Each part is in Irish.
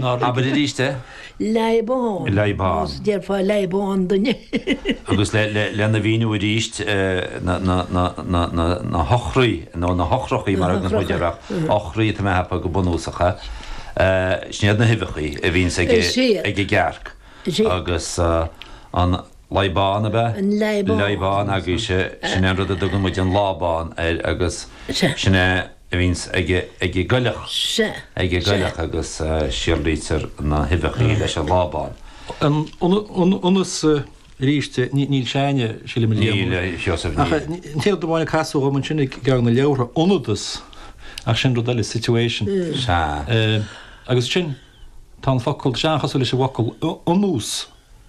Nár abair arís é. Leadhbán. Leadhbán. Nós, déarfá leadhbán duine. Agus lena mhíniú arís na heochraí nó na heochrachaí mar a thugann muid orthu, eochraí atá mé a cheapadh go bunúsach ea, sin iad na huibheachaí a bhíonns ag an gcearc agus an. Lábán ab ea? An Lábán. Lábán agus sin é an rud a dtugann muid an lábán air agus sin é a bhíonns ag an gcoileach, ag an gcoileach agus síolraítear na huibheachaí leis an lábán. Ionas, arís, níl Seánie, sílim, níl, níl Seosamh, níl, ach an té amháin a casadh dhom ansin i gceann na leabhartha, ionadas, ach sin rud eile, situation. Sea. Agus sin, tá an focal, sin an-chosúil leis an bhfocal, ionnús.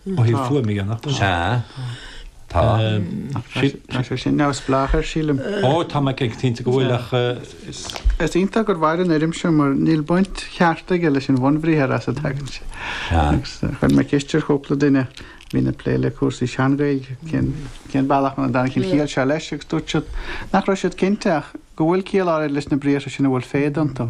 ó thaobh fuaimníochta de. Sea. Tá. Tá sé sin neamhspleách air, sílim. Ó, tá mé cinnte go bhfuil ach. Is iontach gur mhair an fhoirm seo mar níl baint cheart aige leis an bhunbhriathar as a dtagann sé. Sea. Agus chuir mé ceist ar chúpla duine a bhíonn ag plé le cúrsaí sean-Ghaeilge cén, cén bealach a dtáinig an chiall seo leis agus dúirt siad nach raibh siad cinnte ach go bhfuil ciall áirid leis na briathra sin a bhfuil féid iontu.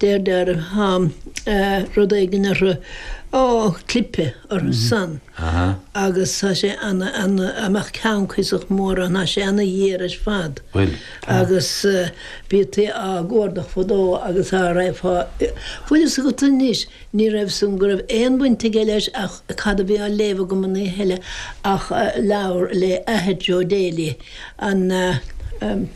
Deirtear thá rud éigin orthu, á, clipe orthu san agus thá sé ana, ana, á mbeadh ceann cuíosach mór ann, thá sé ana ghéar ar fad. Bhuel, tá. Agus bhítí á gcuardach fadó agus a' raibh fá, bhfuil 'fhios agat anois, ní raibh san, go raibh aon bhaint aige leis ach cad a bhí á léamh agam an oíche eile ach leabhar le athair Joe Daly, an.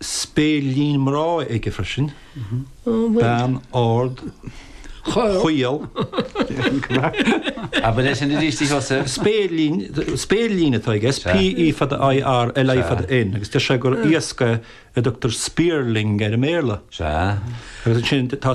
spéirlín mná aige freisin, bean ard chaol. Abair é sin arís, a Sheosaimh. Spéirlín, spéirlín atá aige, S, P, E fada I, R, L, I fada N, agus deir sé gur iasc é a dtugtar spearling air i mBéarla. Sea. Agus ansin tá.